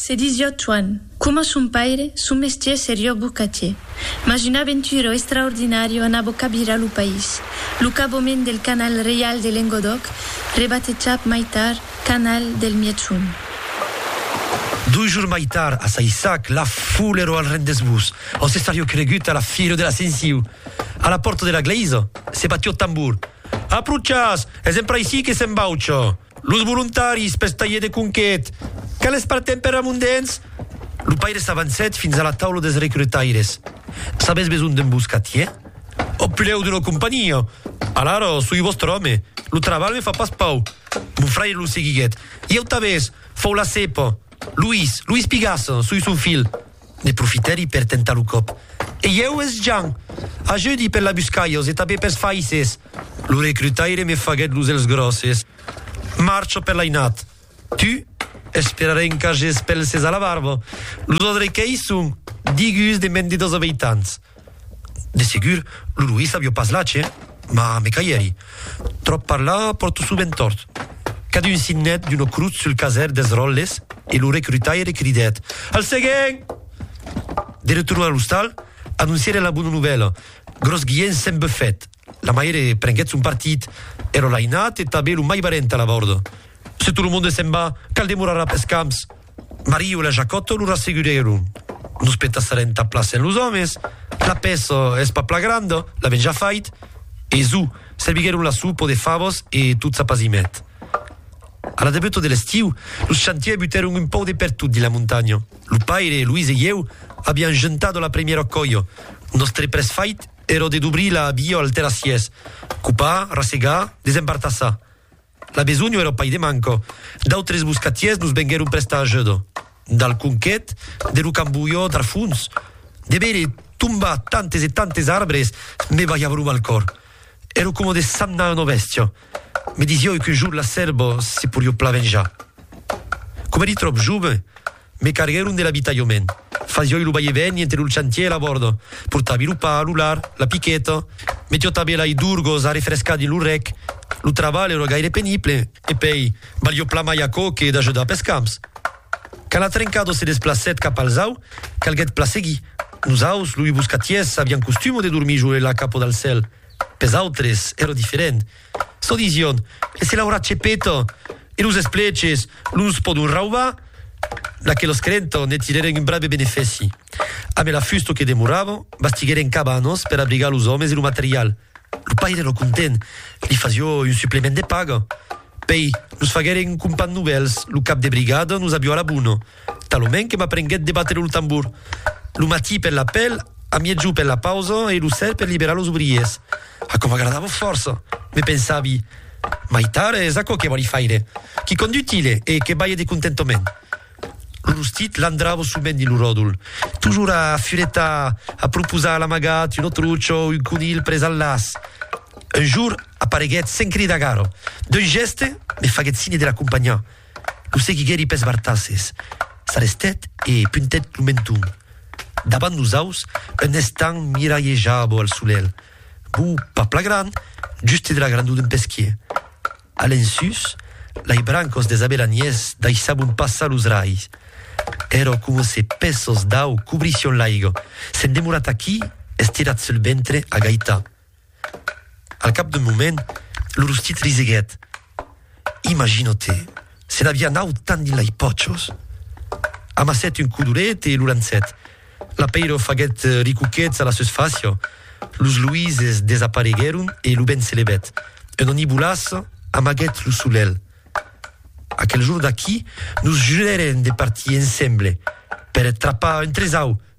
Se disiá Tuan. Coma son paire, son mestier serió bocatier. Mas una aventura extraordinària anava cabirar lo país. Lo cabomèn del canal reial de Lengodòc, rebatejat mai tard canal del Mièg-Sond. Dos jours mai tard, a Saissac, la foule èra al rendez-vous, ont se serió cregut a la fira de l'Ascensiu. A la pòrta de la glèisa, se batió tambor. Aprochatz! Es empra aicí que s'embaucha! Los volontaris pels talhiers de conquet, que les partem per amondens? Lo paire s'avancèt fins a la taula dels recrutaires. Sabètz besonh d'un boscatier? Ò pilhèu d'una companhia? Alara, soi vòstre òme. Lo trabalh me fa pas pau. Mon fraire lo seguiguèt. Ieu tanben, fau la cepa. Luís, Luís Pigassa, soi son filh. Ne profitèri per tentar lo còp. Ei eu, es Jean! Ajudi per l'abuscalhos e tanben pels faisses! Lo recrutaire me faguèt los elhs gròsses. Marcho per l'ainat. Tu? Esperarè encages pels ses a la barba. Los odrequèis son digus de mendedors aveitants. De segur, lo Luís avió pas lache, mas me caièri. Tròp parlar pòrto sovent tòrt. Cadun signèt d'una crotz sul caser dels ròtles e lo recrutaire cridèt, Al seguent! De retorn a l'ostal, anoncièren la bona novèla, Gròs Guiènh s'en bufèt. La maire prenguèt son partit, ero lainat e tanben lo mai barènt a la vòrda. Se tot lo monde s'en va, cal demorar après camps! Mario e la Jacòto lo rassegurèron. Nos petassarem ta plaça en los òmes, la pèça es pas pla granda, l'avèm ja fait. E zù, serviguèron la sopa de favas e tot s'apazimèt. A la debuta de l'estiu, los chantiers butèron un pauc de pertot dins la montanha. Lo paire, Luis e ieu aviam juntat la primièra còia. Nòstre près fait èra de dobrir la via al terrassièrs, copar, rassegar, desembartassar. La besonh èra pas de manco. D'autres boscatièrs nos venguèron prestar ajuda. Dal conquet de lo cambolhó d'Arfons, de veire tombar tantes e tantes arbres me balhava lo mal còr. Èra coma de sagnar una bèstia. Me disiái qu'un jorn la sèrva se porió plan venjar. Coma èri tròp jove, Me carguèron de l'abitalhament. Fasioi lo vai e vèni entre lo chantier e la bòrda. Portavi lo pa, lo lard, la piqueta. Me tiotavi lai d'urgos arrefrescar dins lo rec. Lo trabalh èra gaire penible. E pei, valió plan mai aquò que d'ajudar pes camps. Quand la trencada se desplacèt cap al zau, calguèt plan seguir. Nos aus, loi boscatiers, avián costuma de dormir jo e la capa dal cèl. Pes autres, èra diferent. Çò disión, e se l'aurà chepeta, e los espleches los pòdon raubar, d'aqueles crerenton ne tirèren un brave benefèci. A mai la fusta que demorava, bastiguèren cabanas per abrigar los òmes e lo material. Lo paire èra content, li fasió un suplement de paga. Pei, nos faguèren un compan novèls, lo cap de brigada nos avió a la bona. Talonment que m'aprenguèt de batre lo tambor. Lo matí per l'apèl, a miègjor per la pausa e lo ser per liberar los obriers. Aquò m'agradava fòrça. Me pensavi, Mai tard es aquò que vòli faire. Quicòm d'utile e que balhe de contentament. Lo rostit landrava sovent dins lo ròdol, tojor a furetar, a proposar l'amagat, un autrucho, un conilh pres al laç. Un jorn apareguèt sens cridar gara. D'un gèste, me faguèt signe de l'acompanhar. Lo seguiguèri pes bartasses, s'arrestèt e puntèt lo menton. Davant nosaus, un estanh miralhejava al solelh, bo pas pla gran, juste de la grandor d'un pesquier. A l'ensús, lai brancos des abelaniers daissabon passar los raigs. Èrò coma se pèços d'au cobrissión l'aiga. S'en demorat aquí, estirat sul ventre, agaitat. Al cap d'un moment, lo rostit riseguèt. Imagino-te, se n'aviá naut tant dins lei pòchos! Amassèt un codolet e lo lançèt. L'apeiro faguèt ricoquets a la susfàcia, los luises desapareguèron e lo vent se levèt. Un onibolàs amaguèt lo solelh. Aquel jorn d'aquí, nos jurèrem de partir ensemble per trapar un tresau!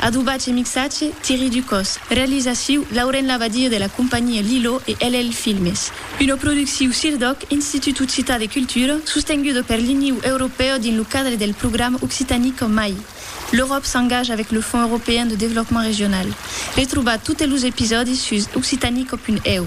Adobatge e mixatge, Thierry Ducos. Realizaciu, Lauren Labadie de la companhia Lilo e LL Filmes. Una producciu CIRDOC, Institut Occitan de Cultura, sostenguda per l'Iniu Europèu dins lo cadre del programa Occitanie qu'en mai. L'Euròp s'engaja avec le Fonds Européen de Développement Régional. Retrobar totes los episòdis sus occitanie-co.eu.